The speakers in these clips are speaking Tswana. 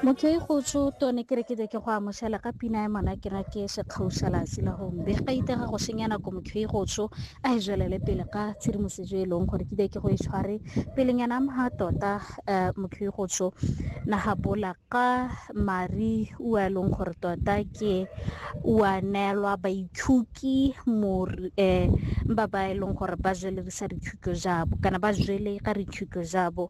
motho e go tsho tone ke re ke ke go amoshela ka pina ya mona ke na ke sekgaushalatsi la gongwe be ga itega go senya nako motho e go tsho a e zwelele pele ka tshedimosetso e leng gore ke be ke go e tshware pelenyana mha tota eh, motho e go tsho na ga bola ka mari ua e leng gore tota ke ua neelwa baithuki um ba ba e leng gore ba zwelerisa dithuto jabo kana ba zwele ka dithuto jabo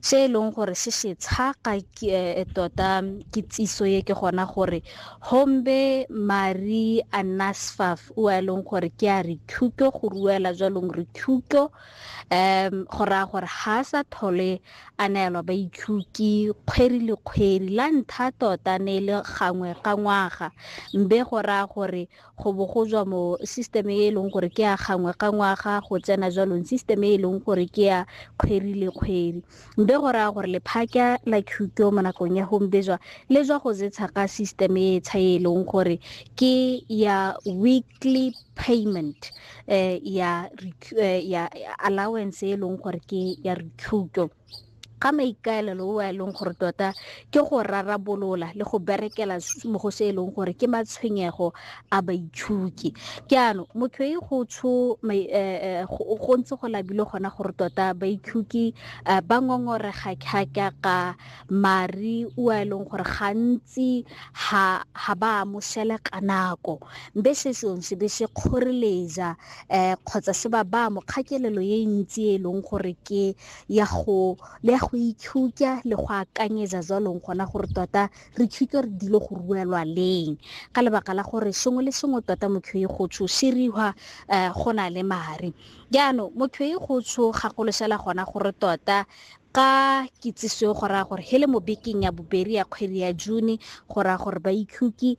se e leng gore se se tshaka eh, tota kitsiso ye ke gona gore hombe mari anasfaf o a e leng gore ke a re thuto go ruela jwalong re thuto um go raya gore ga a sa thole a neelwa ba ithuki kgweri le kgweri la ntha tota ne e le gangwe ka ngwaga mbe go raya gore go bo go tswa mo system e e leng gore ke ya gangwe ka ngwaga go tsena jwalong system e e leng gore ke ya kgwedi le kgwedi mbe go raya gore lephaka la qto mo nakong ya gombejwa le jwa go zetsha ka system e e tsha e leng gore ke ya weekly payment eh, ya, eh, ya allowance e leng gore ke ya recruto ga maikaelelo o a e leng gore tota ke go rarabolola le go berekela mo go se e leng gore ke matshwenyego a baitshuki ke ano motho e go tsho eh, eh, go ntse go labile gona gore tota baitshuki eh, ba ngongorega kgaka ka mari o a e leng gore gantsi ha ha ba amoshele ka nako mbe se sone se be se kgoreletsa um kgotsa se ba ba mokgakelelo e ntsi e leng gore ke ya go le ya go itshutya le go akanyetsa jalong gona gore tota re tshutse re dilo go ruelwa leng ka lebaka la gore sengwe le sengwe tota motho e go tsho se riwa eh, go na le mare jaanong motho e go tsho gakoloshela gona gore tota ka kitsiso go raya gore he le mo bekeng ya bobedi ya kgwedi ya june go raya gore ba ikhutse